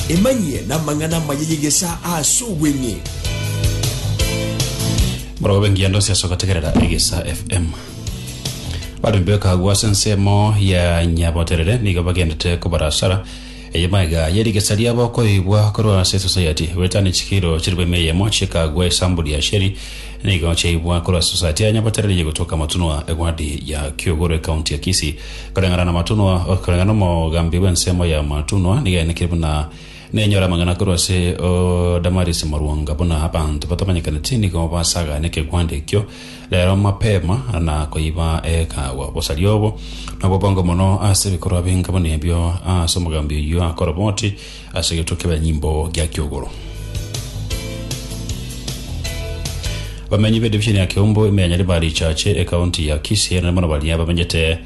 Emanyie n'amang'ana amaya y'egesaa ase obweng'e. Morogo b'engiya ndonsi ase ogotegerera Egesa FM. Baremi bekagwa ase ensemo ya Nyaboterere nigo bagendete kobarasara eye maega ye rigesa riabo koigwa korwa ase Society. Bwetani chikiro chiri bw'eme eyemo chikagwa esamburi ya Sheri nigo chiaigwa korwa ase Society ya Nyaboterere ye gotoka Matunwa egwadi ya Kiogoro ecounty ya Kisii. Koreng'ana namatunwa, koreng'ana nomogambi bw'ensemo y'amatunwa, nigaenekire buna nenyore amang'ana korwa ase o Damaris Morwonga, buna abanto batamanyekaneti nigo basagane ekegwanda ekio rero mapema na koiba ekaagwa. Obosaria obo nobobongo mono ase ebikorwa binga buna ebio ase omogambi oyio akora bwoti, Ase egetwe kebanyimbo gia kiogoro. Bamenyi be division ya Kiombo emenyanyare ba Richache ekaunti ya Kisii erinde mono baria bamenyete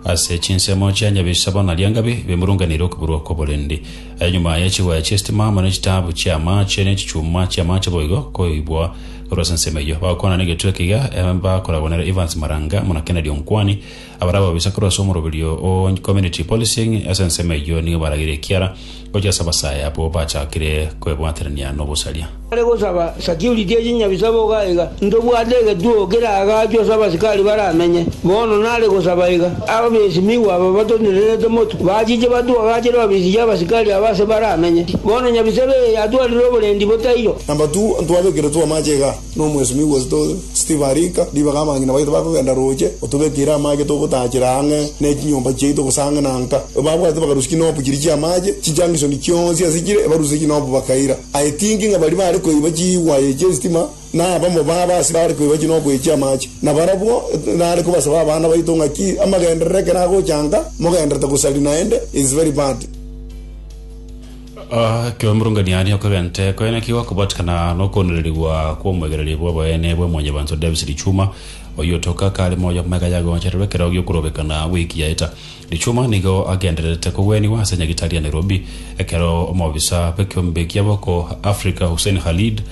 ase chinsemo chia Nyabisabo na Liangabi bemurunganire okoburwa kw'oborendi aye nyuma ye chiwaya chi'esitima amo ne chitaabu chi'amaache ne chichuma chi'amaache boigo koibwa korwa ase ensemo eyio. Bagokwana negetwe ekiya bakoragwa nere Evans Maranga muna Kennedy Onkwani Abare ababisa korwa ase omoroberio o Community Policing ase ensemo eyio nigo baragire ekiara gochia ase abasae abwo bachakire kwebwaterania nobosaria. Bare gosaba security ya chinyabisa boga iga, Ntobwate egetuo keraagachwe ase abasikari baramenye. Bono nare gosaba iga, Abesimigwa aba batonenerete motwe, bachiche batuagachere ofisi ya abasikari aba ase baramenye. Bono nyabisa eye yatwarire oborendi botairo. Number two, Ntwabekerete amache iga, Nomwesimi Augusto, Steve arika ribaga abang'ina baito bakogenda roche, Otobekeire amache togotaachera ang'e ne chinyomba chiaito gose ang'e na nka. Babwate bakarusia chinopu chiria chi'amache chinchankishoni chionsi ase chire, ebarusia chinopu bakaira. Aye tinki ng'a baria baare koiba chiwaye chi'esitima nabamo babo ase baare koiba chinopu echi chi'amache. Na barabwo nare kobasaba abana baito ng'aki amagenderero ekero agochanka, mogenderete gosari naende is very bad. Ekero omorunganiani okegente kwene kigo kobatikana nokoondererigwa kw'omoegereria bw'abaene bwa Mwanyabanto Davis Lichuma, oyio otoka kare moyo amagega yagochererwa ekero gi'okorogekana wiki yaeta. Lichuma nigo agendererete kogwenigwa ase nyagitari ya Nairobi ekero omobisa bw'ekeombe kia boko Africa Hussein Khalid